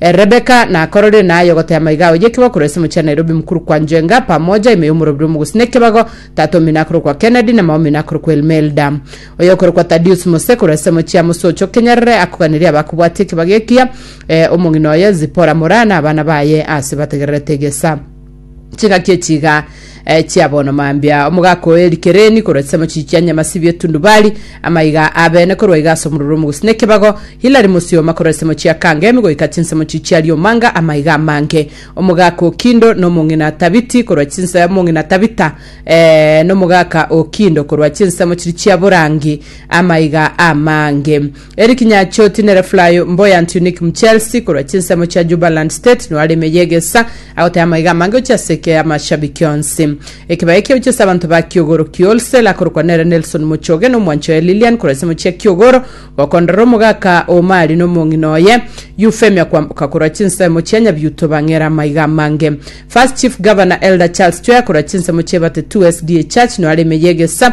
Rebeka nakororire naye ogotaya maiga aoye ekebago korwa ase omochie wa Nairobi mokuru kwa Njenga pamoja ime y'omorobiri omogusii na ekebago tata omino akorokwa Kennedy na mama omino akorokwa Elmelda oyokorokwa Tadius Mose korwa ase omochie wa Mosocho Kenyerere akoganirie abakobwatia ekebago ekiya eh, omong'ina oye Zipora Moraa na abana baye ase bategererete egesa Chingaki echi iga eh, chia bono mambia, omogaka oye Likereni korwa chisemo chichi chia Nyamasibi Etundubari, amaiga abene korwa iga ase omororo omogosi na ekebago, Hilari Mosioma korwa chisemo chia Kangemi goika chinsemo chichi chia Liomanga, amaiga amange, omogaka o Kindo na omong'ina Tabiti korwa chinse omong'ina Tabita eh, na omogaka o Kindo korwa chinsemo chiri chia Borangi, amaiga amange. Eric Nyacho, Tinere Fly, Mboyant Unique Mchelsi korwa chinsemo chia Jubaland State noare ime y'egesa agoteba amaiga amange gochia ase eke y'amashabiki onsi. Ekebao ekio gochia ase abanto ba Kiogoro Kiwholesale akorokwa nere Nelson Muchoge na omwancho oye Lilian korwa ensemo chia Kiogoro gokonderera omogaka o Omari na omong'ina oye Euphemia kwamboka korwa chinsemo chia Nyabiuto bang'ere amaiga amange. First Chief Governor Elder Charles Chwea korwa chinsemo chia Ebate 2 SDA Church noare ime y'egesa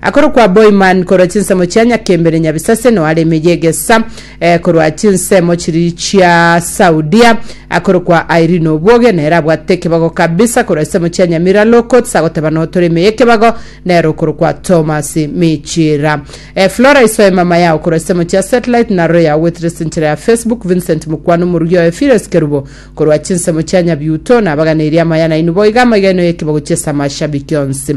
Akorokwa Boiman korwa chinsemo chia Nyakembere Nyabisaseno are emeye egesa korwa chinsemo chiri chia Saudia. Akorokwa Irene Obuoge nere abwate ekebago kabisa korwa isemo chia Nyamira Low Courts agoteba notore emeye ekebago nere okorokwa Thomas Michira. Flora Isoe mama yao korwa isemo chia Satellite na Roya ogwetire sinchera ya Facebook Vincent Mukwano omorugi oye Phileas Kerubo korwa chinsemo chia Nyabiuto nabaganeirie amaya nainwe boiga amaiga enoyo ekebago chiesa amashabiki onsi.